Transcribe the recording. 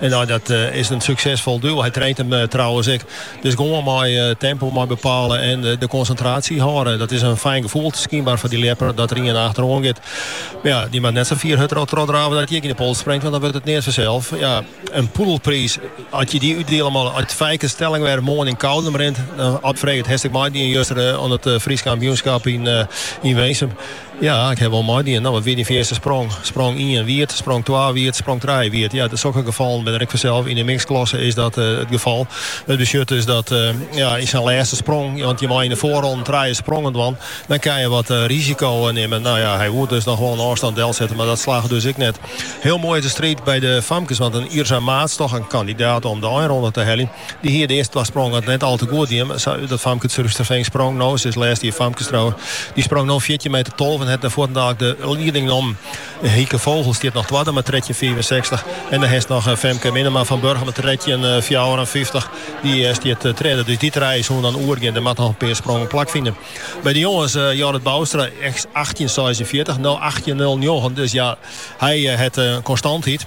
En nee dat is in suksesfol duo. Hy traint him trouwens ek. Dus gewoan mei tempo mei bepale en de konsintratie hâlde. Dat is in fijn gefoel skynber foar dy ljepper dat der ien achteroan giet. Ja, dy moat net sa fier achteroan trochdrave dat hy ek yn de pols springt, want dan wurdt it neat fansels. Ja, in poedelpriis, as je dy útdiele moatte, as Fijke Stellingwerf moarn yn Koudum rint, dan wurdt frege, hast ek meidien juster oan it Frysk kampioenskap yn Winsum. Ja, ik haw wol meidien. No, wat wie dyn fierste sprong? Sprong ien wiet, sprong twa wiet, sprong trije wiet. Ja, sokke gefallen binne der ek fansels. Yn de miksklasse is dat it gefal. It betsjut dus dat ja, yn syn lêste sprong, want je mei yn de foarronnen trije sprongen dwaan, dan kin je wat risiko nimme. No ja, hy woe dus noch gewoan in ôfstân delsette, mar dat slagge dus ek net. Hiel moai is de striid by de famkes, want in Yrsa Maats, toch in kandidaat om de einronde te heljen, Dy hie de earste twa sprongen net al te goed dien. Dat famke út Surhústerfean sprong no, se is lêst jier famkestrower, dy sprong no fjirtjin meter tolve en hat fuortendaliks de lieding nommen. Hieke Vogel stiet noch twadde mei trettjin fiifensechstich en dan hast noch Femke Minnema fan Burgum mei trettjin fjouwerenfyftich, dy stiet tredde. Dus dy trije soene dan oergean. Der moatte noch in pear sprongen plakfine. By de jonges, Jorrit Boustra, achttjin seisenfjirtich, no achttjin nul njoggen, dus ja, hy hat konstantheid.